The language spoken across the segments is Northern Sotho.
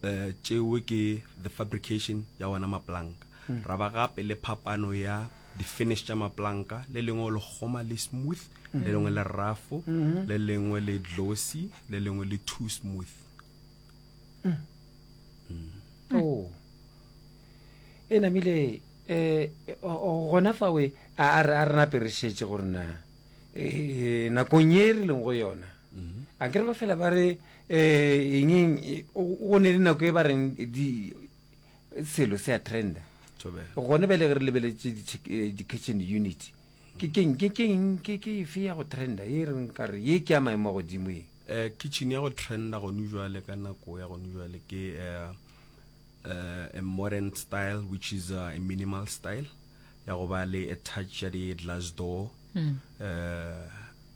Uh, tšeo ke the fabrication ya ona maplanka mm. ra ba gape le phapano ya di-finish tša maplanka le lengwe le kgoma le smooth mm -hmm. le lengwe le rafo mm -hmm. le lengwe le glossy le lengwe le too smooth mm. Mm. Oh. e namile eh, gona fa we a re na perešetše gore na eh, nakong ye e re leng go yona mm-hmm. a kere ba fela ba re Eng go ne le nako e ba reng di selo se a trenda gone bjale ge re lebeletše di-kitchen unit ke keng ke keng ke ke efe ya go trenda e reng ka re ye ke ya maemo a godimo e um kitchen ya go trenda gone jwale ka nako ya gone jwale ke um a modern style which is a minimal style ya go ba le a touch ya di-glass door um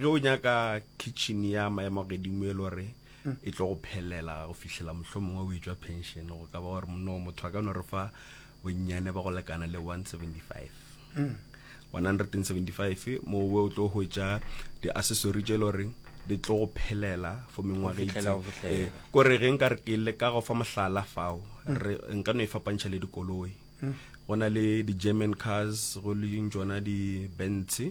Ge o nyaka kitchen ya maemo a godimo e lore e tlo go phelela go fihlela mohlomongwe o etšwa pension, go ka ba gore monna wa motho a ka no re fa bonnyane ba go lekana le 175 175 mo we o tlo hwetša di-accessory tše e le goreng di tlo go phelela for mengwaga Go fihlela, go fihlela. Eh, ko re ge nka re ke le ka go fa mohlala fao re nka no e fapantšha le dikoloi go na le di-german cars go le ding tsona di-bentsy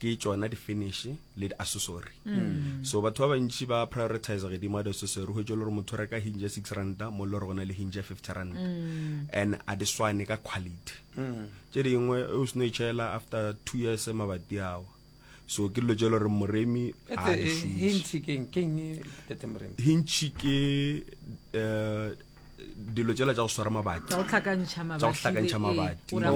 ke tšona di-finish le di-accessory mm. so batho ba bantši ba prioritize gedimo ga di-accessory go tšo le gore motho o reka hinge ya six ranta mo le gore go na le hinge ya fifty ranta mm. and a di swane ka quality mm. tše dingwe o seno e tšhela after two years mabati ao so ke dilo tše le gore moremi hintšhi ke um eh, dilo tsela tsa go swara mabati tsa go tlhakantšha mabati gore a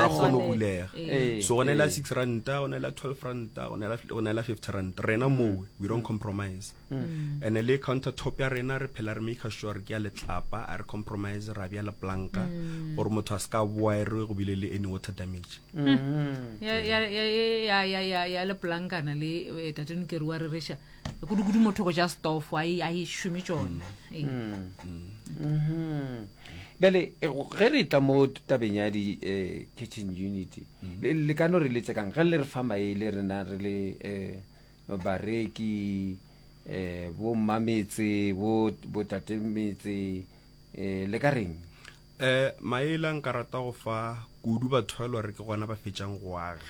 kgone go bulega eh. so go ne la eh. six ranta go ne la twelve ranta go ne la fifty ranta rena mowe we don't compromise hmm. Hmm. and le counter top ya rena re phela re maker sure re ke ya letlapa a re compromise ra bjala planka hmm. gore motho a se ka boa e re go bile le any water damage ya le plankana le eh, tatenokeri wa re reša kudu-kudu motho go ja stofo a e šome tšone bjale eh, ge re tla mo tabeng ya di-kitchen eh, unity mm. le ka no re letse kang ge le re fa maele rena re le um bareki um bo mmametse bo tatemetse um le ka reng E, Maila nka rata go fa kudu batho ba e le gore ke gona ba fetšang go aga.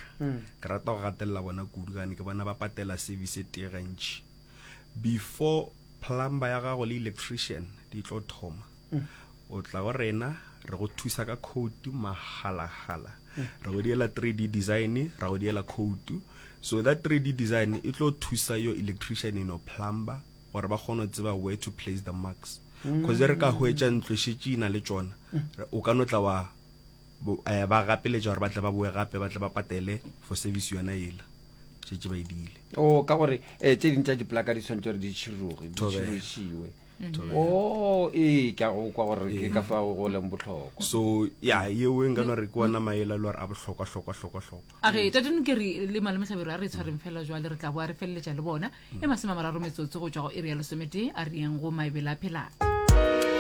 Ke rata go gatelela bona kudu gane ke bona ba patela service e tee gantši before plumber ya gago le electrician di tlo thoma. O tla go rena re go thusa ka khoutu magalagala, re go diela 3D design, ra go diela khoutu. So that 3D design e tlo thusa yo electrician eno plumber gore ba kgone go tseba where to place the marks. kgoze re ka hwetša ntlo šetše ina le tšona o ka no tla wa eh, ba gapeletša gore ba tle ba boe gape ba tle ba patele for service yona ela šetše ba edile o ka gore eh, tse ding tša diplaka di tshwanetse gore di tšhiroge di Thobela. tšhirošiwe o ee ke a go kwa gore ke ka fa go leng botlhokwa so ya yeo e nka no re ke ona maela e le gore a bohlokwa hlokwa hlokwa hlokwa a re tate nokeri le malome tlhabero a re tshwareng fela jwale re tla boa re feleletša le bona e masome mararo metsotso go tšwa go iri ya lesometee a riyeng go maebele a phelang